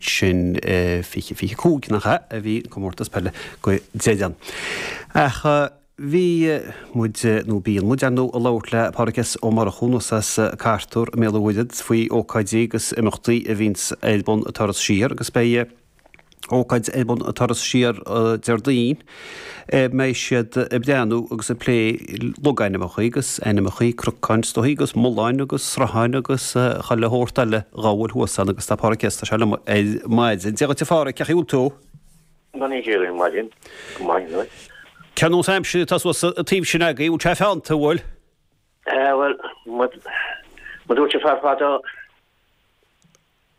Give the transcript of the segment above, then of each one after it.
sin i 2025 nach ea a bhí an Comórtas Peile go deimhin. Ach bhí muid, nó bíonn muid, ar ndóigh, ag labhairt le Pádraig S. Ó Murchú, anois as Cartúr, i mBéal an Mhuirthead faoi ócáidí agus imeachtaí a bhíonns ar bun ag Turas Siar agus beidh ócáid ar bun ag Turas Siar Déardaoin, a mbeidh siad ag breathnú agus ag plé logainmneacha agus ainmneacha cnocáin is dóiche agus mulláin agus srutháin agus chuile shórt eile dhá bhfuil thuas ann agus tá Pádraig S. anseo liom ar maidin. Dia dhuit a Phádraig, cén chaoi a bhfuil tú? Gan é dhéirí maidin, go maidin dhuit. Cén sórt aimsir atá thuas an taobh sin agaibh, bhfuil sé feannta an bhfuil? Eh, bhuel, mar a dúirt an fear fadó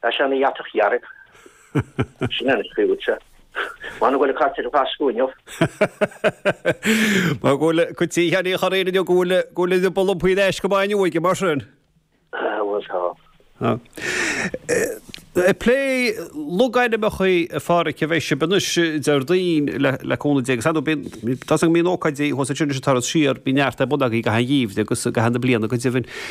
Tá sé ina dhatach dhearg. Sin é an scríobhadh seo. Mar go bhfuil an cartadh ar fad acu inniu. Mar go bhfuil cuid tí cheana a chur air inniu go bhfuil, go bhfuil idir bol an paoin ais go maith inniu aige, mar sin. Bhuel tá. Ag plé logainmneacha a Phádraig a bheidh sibh anois, Déardaoin, le cúnamh Dé, agus tá a fhios agam na hócáidí thuas ansin, ag Turas Siar, bhí neart ar bun agaibh i gcaitheamh an tsamhraidh agus i gcaitheamh na bliana go deimhin.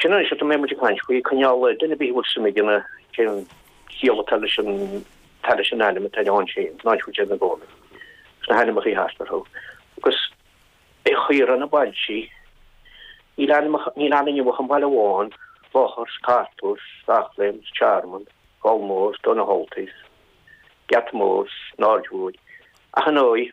Sin anois atá mé muid ag caint faoi, coinneáil duine ar bith a bhfuil suim aige ann cén chiall atá leis an atá leis an ainm atá ann féin, in áit go dtéann ina gcónaí is na hainmneacha thart orthu. Agus i shaoire na bailtí, níl ainmeacha, níl ann inniu ach an baile amháin, Clochar, 's Cartúr, 's Eachléim, 's Tearmann, Fál Mór, 's Tóin na hOltaí 's, Geata Mór, 's an Aird Mhóir, ach ar ndóigh,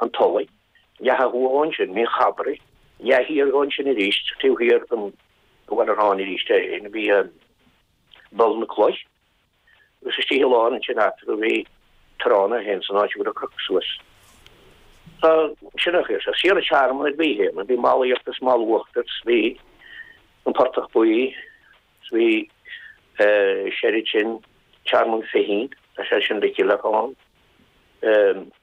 an tulaigh, leath ó thuaidh ansin, Mín Chabrai, leath thiar ansin arís, taobh thiar den bhaile ar tháinig arís é féin, bhí an Ball na Cloich, agus istigh i lár ansin eatarthu bhí Tránna féin san áit a bhfuil an Croc suas. Tá sin ar chor, tá Saoire Tearmann ar bith féin, bhí Mall Íochtair 's Mall Uachtair 's bhí an Portach Buí 's bhí soir uaidh sin Tearmann Fichín, tá soir uaidh sin Mhicil Eacháin.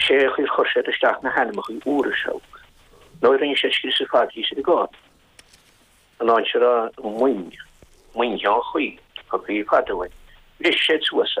Sé an chaoi ar chuir siad isteach na hainmneachaí úra seo nó a rinne siad scrios ar fad bhí siad i gcónaí in ann siar a mhoin, moin Sheán Chaoil, an chaoi fada uainn, bhris siad suas a.